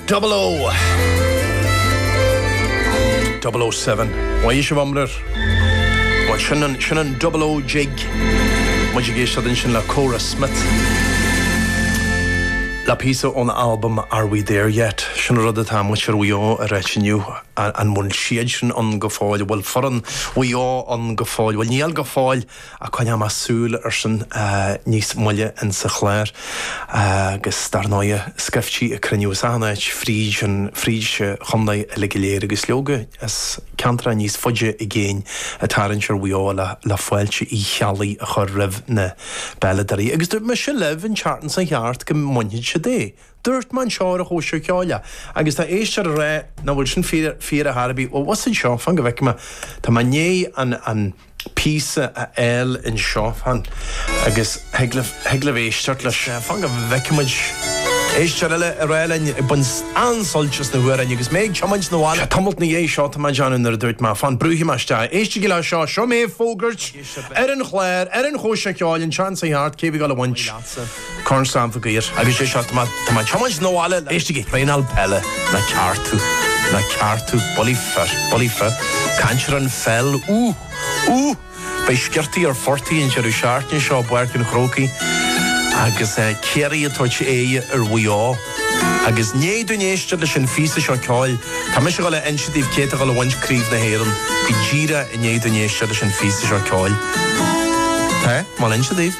Double O! Double O Seven. Ó a fhaoiseamh iomrair! Bhuel, sin an, sin an Double O Jig. Muid ag éisteacht ansin le Cora Smyth, le píosa óna albam Are We There Yet? Sin an rud atá muintir Mhaigh Eo a rá inniu, an bhfuil siadsan ann go fóill, an bhfuil foireann Mhaigh Eo ann go fóill? Bhuel, níl go fóill! Ach coinneoidh muid súil airsean níos moille insa chlár agus dar ndóighe, scaifte ag cruinniú as achan áit fríd an, fríd an chondae uilig go léir agus leoga, as ceantracha níos faide i gcéin ag tarraingt ar Mhaigh Eo le fáilte Uí Cheallaigh a chur roimh na bpeileadóirí. Agus dúirt mise libh an tseachtain seo thart go mbainfeadh siad é. Dúirt mé anseo ar an chóisir cheoil é agus tá éisteoir ag rá nach bhfuil sin fíor, fíor ar chor ar bith. Bhuel, bhfuil a fhios agat seo, fan go bhfeice mé, tá mé i ndiaidh an, an, píosa a fháil anseo fan agus thig libh éisteacht leis. Fan go bhfeice muid. Éisteoir eile ag rá linn ag baint an-suilt as na hamhráin agus mé ag tiomáint na bhaile. Tamalt na dhiaidh seo tá mé ag déanamh nuair a dúirt mé, fan, brúfaidh mé isteach. Éistigí le seo, seo mé ag fógairt ar an chlár, ar an Chóisir Cheoil, an tseachtain seo thart, cé a bhí ag dul a bhaint? Corn Sam Maguire. Agus sé seo, tá mé ag tiomáint na bhaile. Éistigí, traenáil peile, nach ceart tú, nach ceart tú, bulaí fir, bulaí fir, ag caint ar an pheil, úh, úh, beidh sciortaí ar phortaigh an deireadh seachtaine seo i bPáirc an Chrócaigh agus eh, Ciarraí ag tabhairt aghaidh ar Mhaigh Eo? Agus i ndiaidh dúinn éisteacht leis an phíosa seo ceoil, tá mise ag dul a inse daoibh cé atá ag dul a bhaint craobh na hÉireann go díreach i ndiaidh dúinn éisteacht leis an phíosa seo ceoil. Tá mé ag dul a inse daoibh.